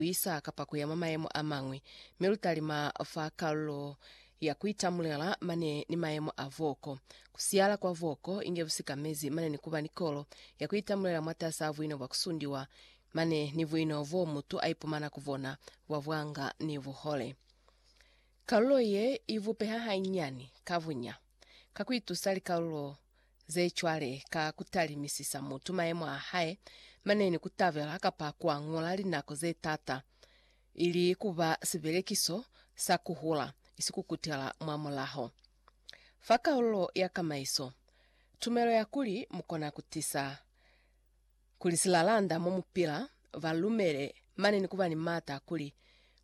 kuisa kapa kuya mwa mayemo amañwi, mi lutalima fa kalulo ya kuitamulela mane ni mayemo a voko. Kusiyala kwa voko inge busikamezi mane ni kuba ni kolo ya kuitamulela mwatas'a buino bwa kusundiwa mane ni buino bo mutu aipumana ku bona bwa bwanga ni buhole. Kalulo ye ibupeha hainyiani ka bunya ka kuitusa likalulo Ze cwale, ka kutalimisisa mutu mayemo a hae, mane ni kutabela kapa kua ñola linako ze tata, ili kuba sibelekiso sa kuhula, isi kukutela mwa mulaho. Fa kaululo ya kamaiso, tumelo ya kuli mukona kutisa. kuli silalanda mo mu pila, ba lumele mane ni kuba ni mata kuli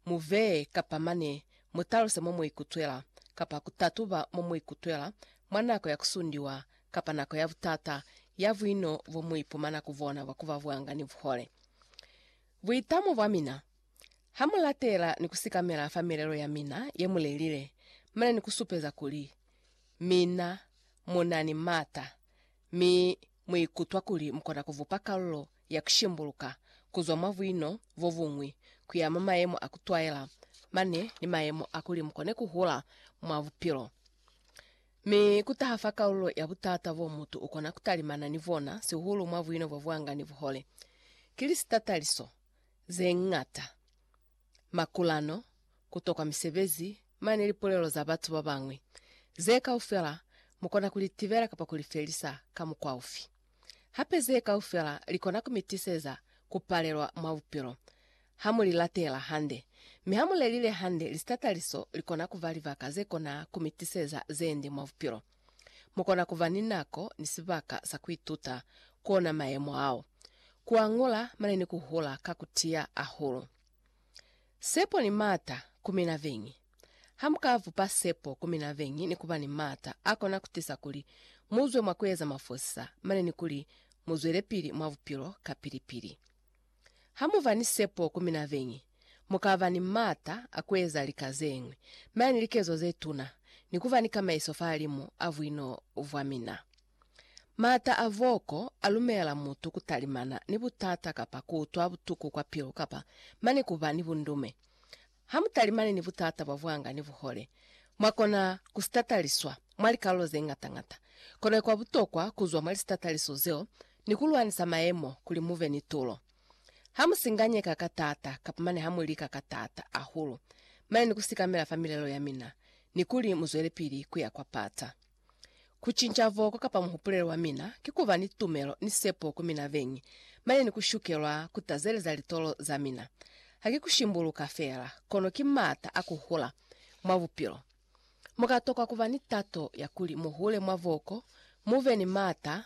mu vee kapa mane mu taluse mo mu ikutwela, kapa ku tatuba mo mu ikutwela mwa nako ya ku sundiwa kapa nako ya butata ya buino bo mu ipumana ku bona bwa kuba bwanga ni buhole. Buitamo bwa mina, Ha mu latela ni ku sikamela fa milelo ya mina ye mu lelile, mane ni ku supeza kuli mina mu na ni mata, mi Mu ikutwa kuli mu kona ku vupa kalulo ya ku shimbuluka ku zwa mwa buino bo buñwi ku ya mwa mayemo a ku twaela mane ni mayemo a kuli mu kone ku hula mwa bupilo. Mi ku taha fa kalulo ya but'ata bo mutu u kona ku talimana ni bona, sihulu mwa buino bo bwanga ni buhole, ki li sitataliso ze ñata. makulano, ku tokwa misebezi, mane lipulelo za batu ba bañwi. Ze kaufela mu kona ku li tibela kapa ku li felisa ka mukwa ufi? Hape ze kaufela li kona ku mi tiseza ku palelwa mwa bupilo, ha mu li latela hande. Mi ha mu lelile hande, lisitataliso li kona ku ba libaka ze kona ku mi tiseza ze nde mwa bupilo. Mu kona ku ba ni nako ni sibaka sa ku ituta ku ona mayemo ao, ku a ñola mane ni ku hula ka ku tiya hahulu. Sepo ni maata ku mina beñi. Ha mu ka bupa sepo ku mina beñi ni ku ba ni maata a kona ku tisa kuli mu zwe mwa ku eza mafosisa mane ni kuli mu zwelepili mwa bupilo kapili-pili. Ha mu ba ni sepo ku mina beñi, mu ka ba ni m'ata a ku eza lika ze ñwi, mi ani likezo ze tuna, ni ku ba ni kamaiso fahalimu a buino bwa mina. M'ata a voko a lumela mutu ku talimana ni butata kapa ku utwa butuku kwa pilu kapa mane ku ba ni bundume. Hamutalimani ni butata bwa bwanga ni buhole, mwakona kusitataliswa mwa likalulo zeñata-ñata. Kono ikwa butokwa kuzwa mwa lisitataliso zeo ni kulwanisa mayemo kuli mube ni tulo. Hamusinganyeka ka taata kapa mane hamulika ka taata ahulu mane ni kusikamela fa milelo yamina ni kuli muzwelepili kuya kwa pata. Ku cinca voko kapa muhupulelo wa mina ki ku ba ni tumelo ni sepo ku mina beñi, mane ni ku shukelwa ku tazeleza litolo za mina. Ha ki ku shimbuluka feela, kono ki m'ata a ku hula mwa bupilo. Mu ka tokwa ku ba ni tato ya kuli mu hule mwa voko, mu be ni m'ata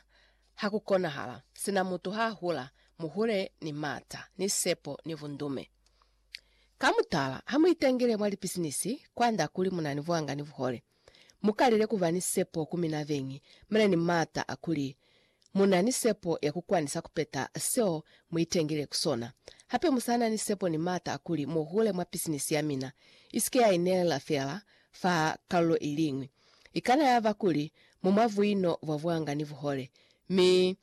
ha ku konahala. Sina mutu ha hula, mu hule ni m'ata, ni sepo, ni bundume. Ka mutala, ha mu itangile mwa lipisinisi, kwand'a kuli mu na ni buanga ni buhole. Mu kalile ku ba ni sepo ku mina beñi. Mu na ni maata a kuli mu na ni sepo ya ku kwanisa ku peta seo mu itengile ku sona. Hape mu sa na ni sepo ni maata a kuli mu hule mwa pisinisi ya mina. I si ke ya inelela feela fa kalulo i liñwi. I kana ya ba kuli mu mwa buino bwa buanga ni buhole, mi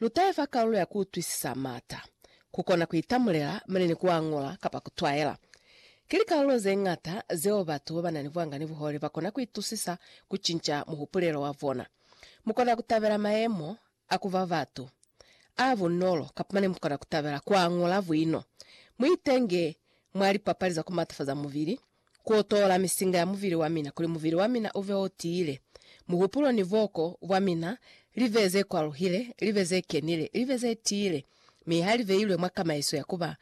Lu taifa kalulo ya ku utwisisa m'ata, ku kona ku itamulela mane ni ku a ñola kapa ku twaela. Ki likalulo ze ñata zeo batu ba ba na ni buanga ni buhole ba kona ku itusisa ku cinca muhupulelo wa bona. Mu kona ku tabela mayemo a ku ba batu a bunolo kapa mane mu kona ku tabela ku a ñola buino. Mu itenge mwa lipapali za ku matafaza mubili Ku otola misinga ya muvili wa mina kuli muvili wa mina uve o tiile, muhupulo ni boko bwa mina live ze kwaluhile, live ze kenile, live ze tiile, mi ha liveilwe mwa kamaiso ya kuba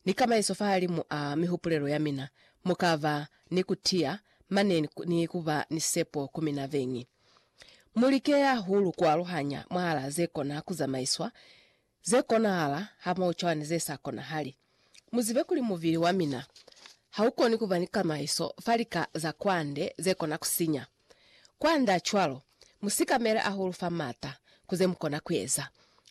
ni kamaiso fahalimu a mihupulelo ya mina, mukaba ni kutiya mane ni kuba ni sepo ku mina beñi. Mulike hahulu kualuhanya mwahala ze kona kuzamaiswa Ze konahala hamoho cwana ni ze sa konahali. Mu zibe kuli mubili wa mina ha u koni ku ba ni kamaiso fa lika za kwande ze kona ku sinya. Kwand'a cwalo, mu sikamele ahulu fa m'ata ku ze mu kona ku eza.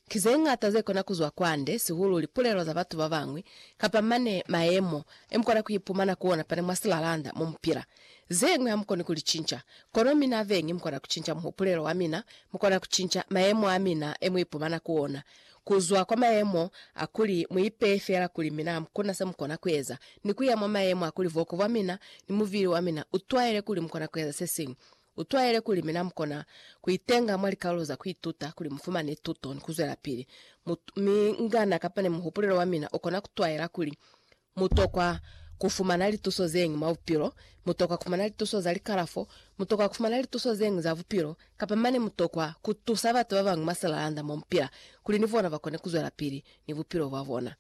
Ki ze ñata ze kona ku zwa kwande, sihulu lipulelo za batu ba bañwi, kapa mane mayemo e mu kona ku ipumana ku ona pane mwa silalanda mo mu pila. Zeñwi hamukoni kulicinca, kono mina beñi mukona kucinca muhupulelo wamina, mukona kucinca mayemo amina emuipumana ku ona, kuzwa kwa mayemo akuli muipeye feela kuli mina hamukuna semukona kueza, ni kuya mwa mayemo akuli buoko bwamina ni mubili wamina utwaele kuli mukona kueza sesiñwi. Utwaele kuli mina mukona kuitenga mwa likaulo za kuituta kuli mufumane tuto ni kuzwelapili. Mu, mi ngana kapa ne muhupulelo wamina ukona kutwaela kuli Mu tokwa ku fumana lituso zeñwi mwa bupilo, mu tokwa ku fumana lituso za likalafo, mu tokwa ku fumana lituso zeñwi za bupilo, kapa mane mu tokwa ku tusa batu ba bañwi mwa silalanda mo mu pila kuli ni bona ba kone ku zwelapili ni bupilo bwa bona.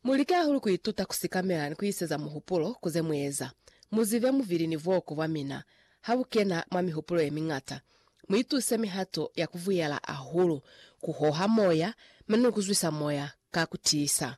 Mu like hahulu ku ituta ku sikamela ni ku iseza muhupulo ku ze mu eza. Mu zibe mubili ni buoko bwa mina ha bu kena mwa mihupulo ye miñata. Mu ituse mihato ya ku buyela hahulu ku hoha moya mane ni ku zwisa moya ka ku tiisa.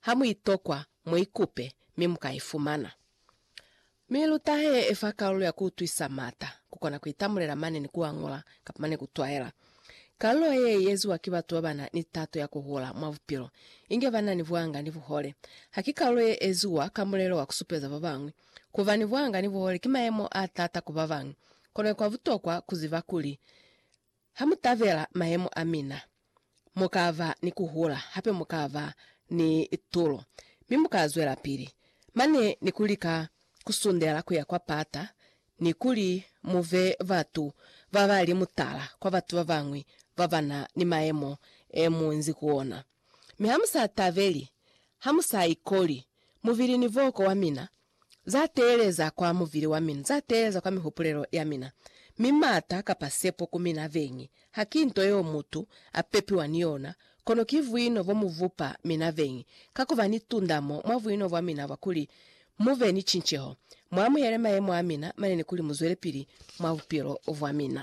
Ha mu itokwa, mu ikupe, mi mu ka ifumana. Mi luta he e fa kalulo ya ku utwisa mata, ku kona ku itamulela mane ni ku a ngola, kapa mane ku twaela. Kalulo ye i eziwa ki batu ba ba na ni tato ya ku hula mwa bupilo, inge ba na ni buhanga ni buhole. Ha ki kalulo ye eziwa ka mulelo wa ku supeza ba bañwi. Ku ba ni buhanga ni buhole ki mayemo a taata ku ba bañwi, kono kwa butokwa ku ziba kuli Ha mu tabela mayemo a mina, mu ka ba ni ku hula, hape mu ka ba ni tulo, mi mu ka zwelapili mane ni ku lika ku sundela ku ya kwa pata ni kuli mu be batu ba ba li mutala kwa batu ba bañwi ba ba na ni mayemo e mu nzi ku ona. Mi ha mu sa tabeli, ha mu sa ikoli mubili ni boko wa mina, Za teeleza kwa muvili wa mina, za teeleza kwa mihupulelo ya mina, mi mata kapa sepo ku mina veñi, ha ki nto yeo mutu a pepiwa ni yona, kono ki vuino bo mu vupa mina veñi, ka ku ba ni tundamo mwa vuino bwa mina bwa kuli mu be ni cinceho, mu amuhele mayemo a mina manene kuli mu zwelepili mwa bupilo bwa mina.